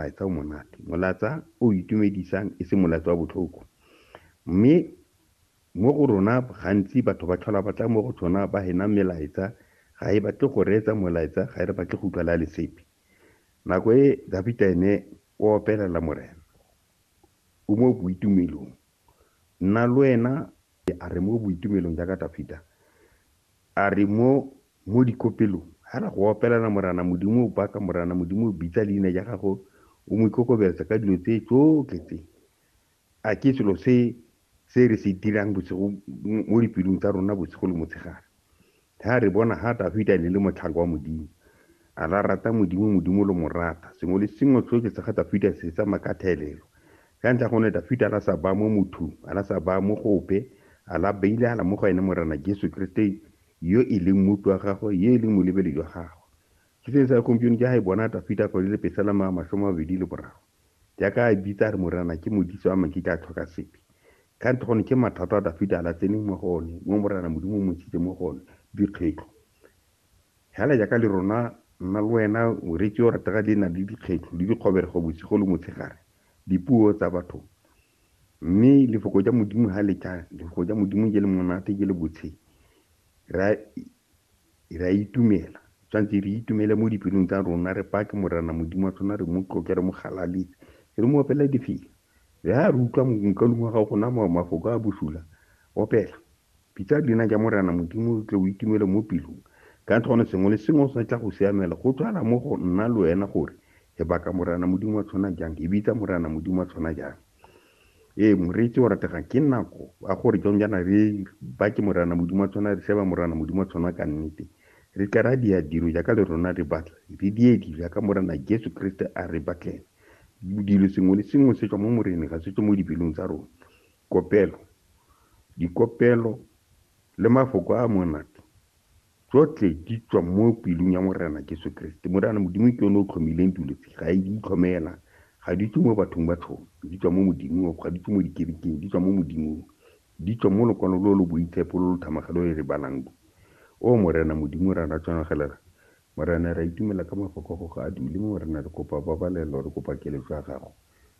Molaetsa o monate, molaetsa o itumedisang, e se molaetsa wa botlhoko. Mme mo go rona gantsi batho ba tlhola ba tla mo go tsona ba hena melaetsa, ga e batle go reetsa molaetsa, ga e re batle go utlwa le a le sepe. Nako e Dafita ene o opelela Morena, o mo boitumelong, Nna le wena A re mo boitumelong jaaka Dafita a re mo mo dikopelong, a re go opelana Morana Modimo o baka Morana Modimo o bitsa leina ja gago o mo ikokobetsa ka dilo tse tsotlhe tse. A ke selo se se re se dirang bosigo mo dipelong tsa rona bosigo le motshegare. Ha re bona ha Dafita ne le motlhaka wa Modimo. A la rata Modimo, Modimo lo mo rata. Sengwe le sengwe tsoke tsa ga Dafita se tsa makathelelo. Ka ntlha gone Dafita a la sa baya mo mothung, a la sa baya mo go ope, a la beile hala mo go ene Morena Jesu Kriste yo e leng Mmopi wa gagwe, yo e leng Molebeli jwa gagwe. Ke se ne sa gompieno ke ha e bona Dafita kgwedi le pesela ma masome mabedi le boraro. Jaaka a bitsa a re Morena ke Modise wa makite a tlhoka sepe. Ka ntho gone ke mathata a Dafita a la tseneng mo go one, mo Morena Modimo o mo ntshitse mo go one, dikgetlo. Hela jaaka le rona, nna le wena, oretsi yo ratega di na le dikgetlo le dikgoberego bosigo le motshegare, dipuo tsa batho. Mme lefoko ja Modimo ha le tla, lefoko ja Modimo je le monate, je le botsheng. Re a Re a itumela. Re tshwanetse re itumele mo dipelong tsa rona, re pake Morena Modimo wa tsona, re mo tloke, re mo galaletse, re mo opela difela. Le ha re utlwa mokalung wa gago gona mafoko a bosula, opela. Bitsa leina ja Morena Modimo, o tle o itumele mo pelong. Ka gone sengwe le sengwe se tla go siamela. Go tshwana mo go nna le wena gore e baka Morena Modimo wa tsona jang, e bitsa Morena Modimo wa tsona jang. Ee, moreetsi o rategang ke nako a gore jang jaana re ba ke Morana Modimo wa tshwana, re sheba Morana Modimo wa tshwana ka nnete. Re tla ra dia dilo jaaka le rona re batla, re die dilo jaaka Morana Jesu Kriste a re batlela. Dilo sengwe le sengwe se tswa mo Moreneng, ga se tswe mo dipelong tsa rona. Kopelo, dikopelo le mafoko a monate Tsotlhe di tswa mo pelong ya Morena Jesu Keresete. Morena Modimo ke yone o tlhomileng dilo tse. Ga di itlhomela, ga di tswe mo bathong ba tshono. Di tswa mo Modimong, ga di tswe mo dikerekeng, di tswa mo Modimong. Di tswa mo lokwalo lo lo boitshepo lo lo thamaga lo re le balang lo. O Morena Modimo, ra ra tshwanagelela. Morena, re a itumela ka mafoko a Gago a dule mo, Morena. Re kopa pabalelo, re kopa keletso ya Gago.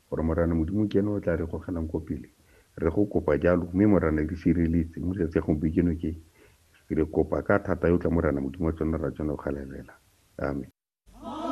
Gore, Morena Modimo, ke ene o tlaa re gogelang ko pele. Re go kopa jalo. Mme, Morena, re sireletse, mo letsatsi la gompiekeno ke. Re kopa ka thata yo o tla, Morena Modimo, wa tsona, ra tsona go galelela. Amen.